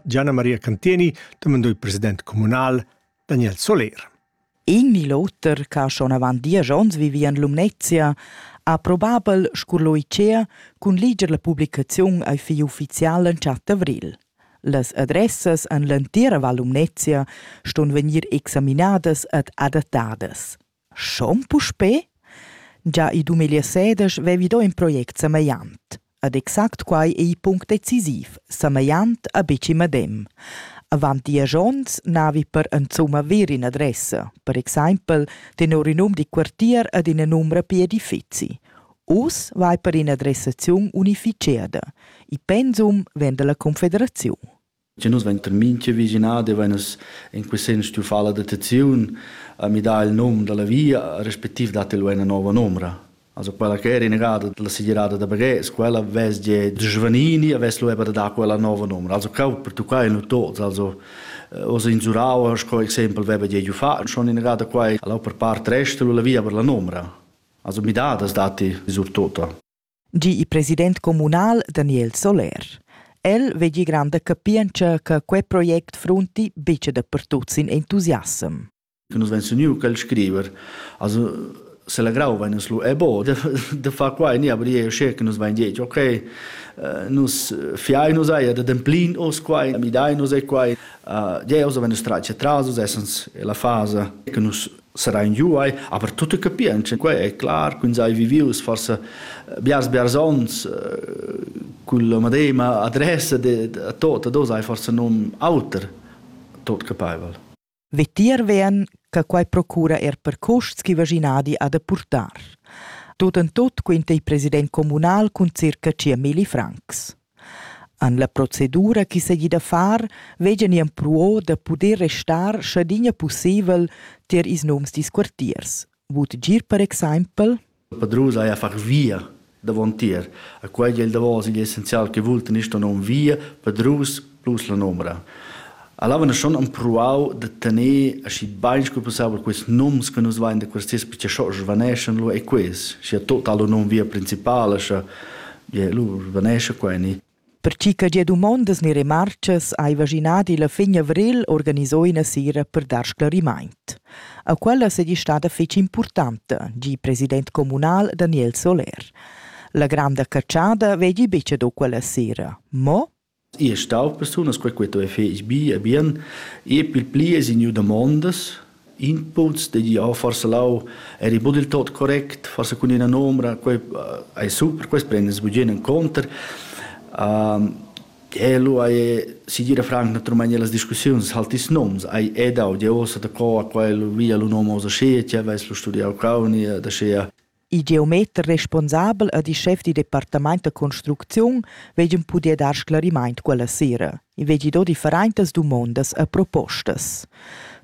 Gianna Maria Canteni demandò il president communal Daniel Soler. In ni l'auter che schon avant diesch onns vivia en Lumnezia ha probabel scurlo Icea cun liger la publicaziun ai fi ufficial en chat d'avril. Las adressas en l'entira Val Lumnezia ston vegnir examinadas ed adattadas. Schon puspè? Gia il dumegl seder vevi do in project samegliant. Ed exact quai ei il punct decisiv, samegliant a betg in medem. Avant diesch onns navi per insumma ver in adressa, per exempel tenor in num di quartier ed ina numra per edifizi. Uss vai per in'adressaziun unificada. Il pensum vegn dalla Confederaziun. che nus vein mintga vischinadi vein nus in quei senn stuiu far la dotaziun e mi dà il num dalla via respectiv dat el una nova numera Also quella che era innegada dalla segirada da Baghes, quella vess ge giovanini e vess lueva da dar quella nova numera. Also cau pertuccai nu tots, also eh, os in Zurau, sco exempel veva ge giu fa, schon innegada quai alla per part resta la via per la numera. Also mi da das dati sur tota. gi il president communal Daniel Soler. El vegli granda capientscha che quei project frunti buca dapertut sin entusiassem. Nus vein suniu quel scriver, also se la grau vein nus lu e bo de, de fa qua ni aber je sche che nus vein detg ok uh, nus fiai nus eia de demplin os qua mi dai nus e qua uh, je os vein nus tracce tras us essens la fasa che nus serain giu ei, aber tutte capientscha, quei è clar, quins hai vivius forse biars biars ons con la medema adressa de tot, dos hai forse num auter tot capaivel. Vitier vien che quei procura er per custs chi vaginadi ha da purtar. Tot en tot quinta il president comunal cun circa 10.000 francs. En la procedura chi seigi da far veggan i empruo da puder restar schadina pusseivel tier ils noms dils quartiers. Vut gir per exaimpel? Il padrun sai far via davontier. A quei dil davos igl essenzial che vultan isto nom via, padrus plus la nomra. Alura schon empruau da tener aschi bein sco pussebel quels nums che nus vein da questas picciaschos svaneschan lu e quels, scha tota lur num via principala, scha bia lur svanescha quei ni. Per chi che gia dumondas ni remarcas aiva Ginadi la fin avril organiso ina sera per dar sclarimaint. A quella sedi stada fece importanta, gi president comunal Daniel Soler. La granda cacciada vegi bice do quella sera, mo I es stau persunas quai chi tuoja fich bi e bien. I pil pli es i gnü damondas, inputs da dir oh forsa lau eri bod il tot correct, forsa cun üna nomra, quai ais super, quest prendess bugen in conter. Quello a e, si dir a franc, natüralmaing illas discussiuns halt ils noms, hai e dau, dir uossa da co a quello via lo nom hoz aschi, tg'avess lu studiau cauni, ad aschia. Il geometer responsabel ed il schef dil departament da construcziun vegien puder dar sclarimaint quella sera. I vegli do differentas dumondas e propostas.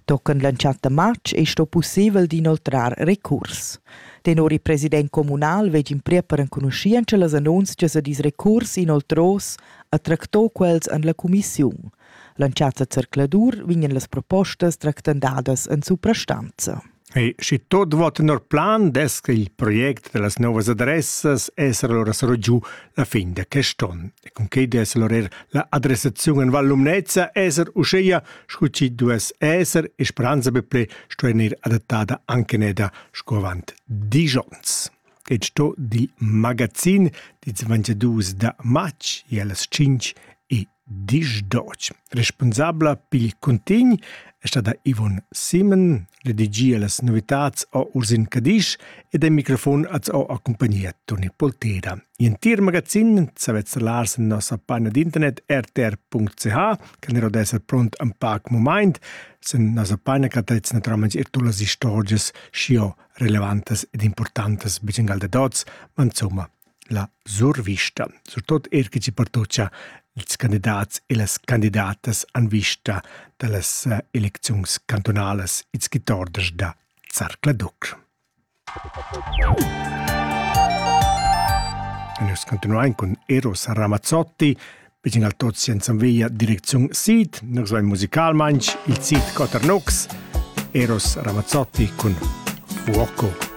Tochen l'entschatta matg ei sto pussibel d'inoltrar recurs. Tenor il president communal vegin pria per enconuschientscha las annunzias ed ils recurs inoltros a tractò quels en la cumissiun. L'entschatta zercladur vegnan las propostas tractandadas en suprastanza. E schi tot vo tenor plan dess che il project da las novas adressas esser ora saro giu la fin da quest on. E cun quei dess allora er la adressaziun en Val Lumnezza esser uscheia scu chi duess esser e speranza be ple sto enir adattada anche neda sco avant digions. Ed sto dil magazin dits 22 da matg e allas 5 e Disch d'otg. Respunsabla pil cuntign è stada Yvonne Simon, redigia las novitads a Ursin Cadisch ed en microfon az ho accumpagnia Toni Polteda. In tir magazin savetz lars en nossa panna d'internet rtr.ch, che ne d'esser pront am pac moment, sen nossa panna che trets naturalment ir tulas istorgias scio relevantas ed importantes bicengal de dots, ma insomma la survista, surtut er che ci pertoccia ils candidats e las candidatas en vista da las eh, elecziuns cantonalas ils quitorders da Zarcladuc. Nus continuain cun Eros Ramazzotti, vicin al tots senza via direcziun Sid, nus vai musicalmain il Sid Coternux, Eros Ramazzotti cun Fuoco.